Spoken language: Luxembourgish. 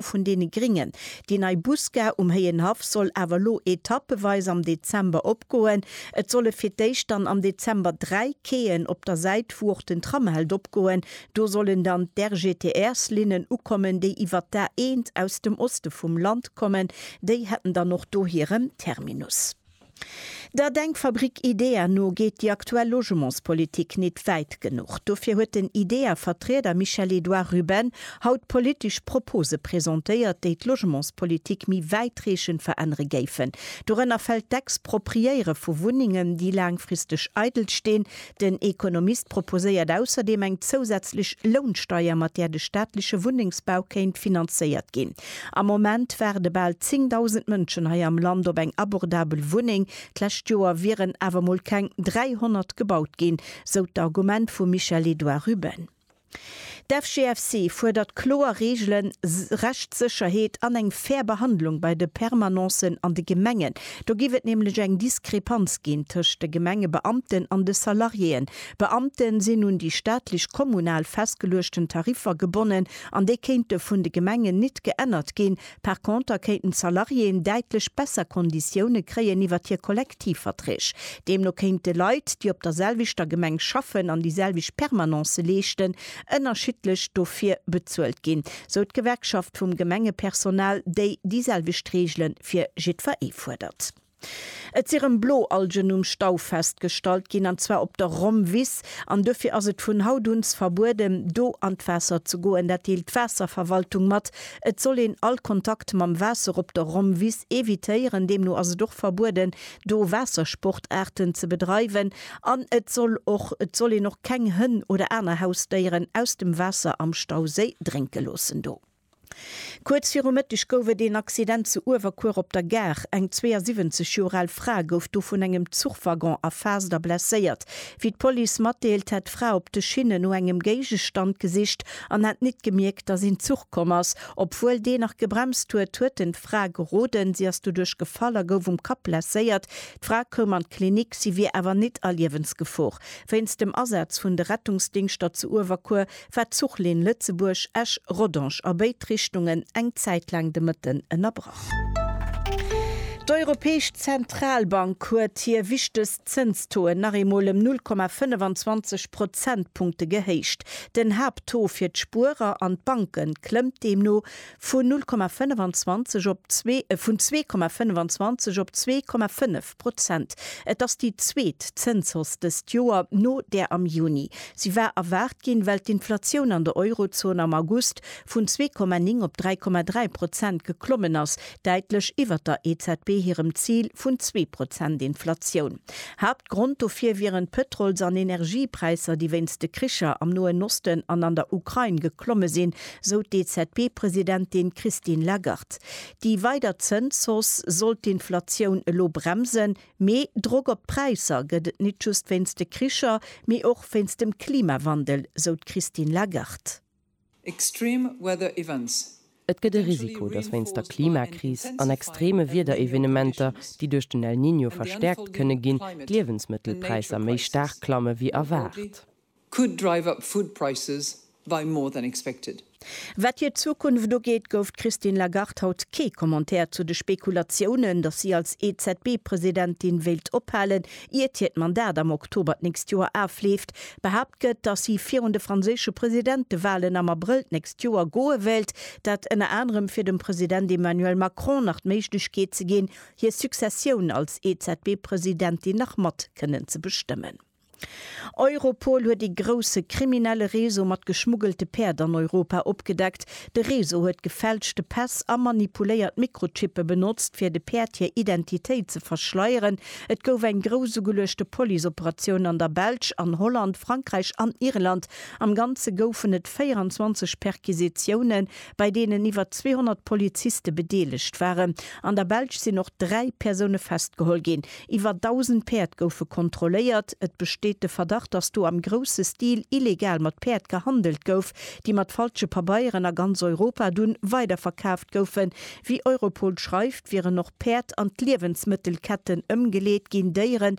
vun deene Gringen. Déi nei Busgare um Héienhaff soll awer elo etappeweis am Dezember opgoen. Et solle fir d'éischt dann am Dezember dräi Quaien op der Säit, wou och den Tram hält, opgoen. Do sollen dann d'RGTR-Slinnen ukommen, déi iwwer d'A1 aus dem Oste vum Land kommen. Déi hätten dann och do hiren Terminus. Der Denkfabrik IDEA no geet déi aktuell Logementspolitik nit wäit genuch. Dofir huet den IDEA-Vertrieder Michel-Edouard Ruben haut politesch Propose presentéiert, déi d'Logementspolitik méi wäitreechend verännere géifen. Dorënner fält d'Expropriéiere vu Wunnengen, déi laangfristeg eidel stinn, Den Ekonomist proposéiert ausserdeem eng zousätzlech Lounsteier, mat där de staatleche Wunnengsbau kéint finanzéiert ginn. Am Moment waarde bal 10.000 Mënschen hei am Land op eng abordabel Wunneng. D'lescht Joer wieren awer mol keng 300 gebaut ginn, sou d'Argument vum Michel-Edouard Ruben. D'FGFC fuerdert kloer Reegelen, Rechtssécherheet an eng fair Behandlung bei de Permanencen an de Gemengen. Do géif et nämlech eng Diskrepanz ginn tëscht de Gemengebeamten an de Salariéeën. Beamte sinn un déi staatlech, kommunal festgeluechten Tariffer gebonnen an déi kéinte vun de Gemengen nit geännert ginn, Par conter kéinten d'Salariéen däitlech besser Konditioune kréien iwwert hir Kollektivverträg. Deemno kéinte Leit, déi op der selwechter Gemeng schaffen an déi selwecht Permanencë leeschten, ënnerschiddlech dofir bezuelt ginn, sou d'Gewerkschaft vum Gemengepersonal, déi déi selwecht Reegele fir jiddweree fuerdert. Et si rëm Bloalgen um Stau festgestallt ginn, an zwar op der Rommwiss. An duerfir ass et vun haut un verbueden, do an d'Waasser ze goen. Dat deelt d'Waasserverwaltung mat. Et soll een all Kontakt mam Waasser op der Rommwiss evitéieren. Deemno ass et och verbueden, do Waassersportaarten ze bedreiwen. An et soll och et soll een och keng Hënn oder aner Hausdéieren aus dem Waasser am Stauséi drénke loossen do. Kuerz viru Mëtteg gouf et een Accident zu Uewerkuer op der Gare. Eng 72 Joer al Fra gouf do vun engem Zuchwaggon erfaasst a blesséiert. Wéi d'Police matdeelt, hätt d'Fra op de Schinne no engem Géigestand gesicht an hätt nit gemierkt, datt een Zuch komm ass. Obwuel deen nach gebremst huet, huet en d'Fra geroden. Si ass doduerch gefall a gouf um Kapp blesséiert. D'Fra koum an d'Klinik, si wier awer nit a Liewensgefor. Wéinst dem Asaz vun de Rettungsdingschter zu Uewerkuer war d'Zuchlinn Lëtzebuerg, Esch, Rodange a béid Richtungen eng Zäit laang de Mëtten ënnerbrach. D'Europäesch Zentralbank huet hir wichtegst Zënstoen nach eemol ëm 0,25 Prozentpunkte gehéicht. Den Haapttaux fir d'Spuerer an d'Banke klëmmt deemno vun 0,25 op vun 2,25 op 2,5 Prozent. Et ass déi zweet Zënshausse dëst Joer, no där am Juni. Si war erwaart ginn, well d'Inflatioun an der Eurozon am August vun zwee Komma néng op dräi Komma dräi Prozent geklommen ass, däitlech iwwer der EZB hirem Zil vun zwee Prozent Inflatioun. Haaptgrond dofir wieren d'Pëtrols an Energiepräisser, déi wéinst de Kricher am Noen Osten an an der Ukrain geklomme sinn, sou d'EZB-Presidentin Christine Lagarde. Déi weider Zënshausse sollt d'Inflatioun elo bremsen, mee Drock op d'Präisser gëtt et nit just wéinst de Kricher, mee och wéinst dem Klimawandel, sou d'Christine Lagarde. Extreme weather events. Et gëtt e Risiko, datt wéinst der Klimakris an extreme Wiederevenementer, déi duerch den El Niño verstäerkt kënne ginn, d'Liewensmëttelpräisser méi staark klamme wéi erwaart. could drive up food prices by more than expected. Wat hir Zukunft ugeet, gouf d'Christine Lagarde haut kee Commentaire zu de Spekulatiounen, datt si als EZB-Presidentin wéilt ophalen, iert hiert Mandat am Oktober d'nächst Joer afleeft. Behaapt gëtt, datt si virun de franséische Presidentewalen am Abrëll d'nächst Joer goe wéilt, dat ënner anerem fir dem President Emmanuel Macron nach d'Méiglechkeet ze ginn, hir Successioun als EZB-Presidentin nach mat kënnen ze bestëmmen. Europol huet ee grousse kriminelle Réseau mat geschmuggelte Päerd an Europa opgedeckt. De Réseau huet gefälschte Päss a manipuléiert Mikrochippe benotzt, fir de Päerd hir Identitéit ze verschleieren. Et gouf eng grouss ugeluechte Police-Operatioun an der Belsch, an Holland, Frankräich an Irland. Am Ganze goufen et 24 Perquisitioune bei deenen iwwer 200 Poliziste bedeelegt waren. An der Belsch sinn och dräi Persoune festgeholl ginn. Iwwer 1.000 Päerd goufe kontrolléiert. Et besteet de Verdacht, datt do am grousse Stil illegal mat Päerd gehandelt gouf, déi mat falsche Pabeieren a ganz Europa dunn weiderverkaaft goufen. Wéi Europol schreift, wieren och Päerd an d'Liewensmëttelketten ëmgeleet ginn, Déieren,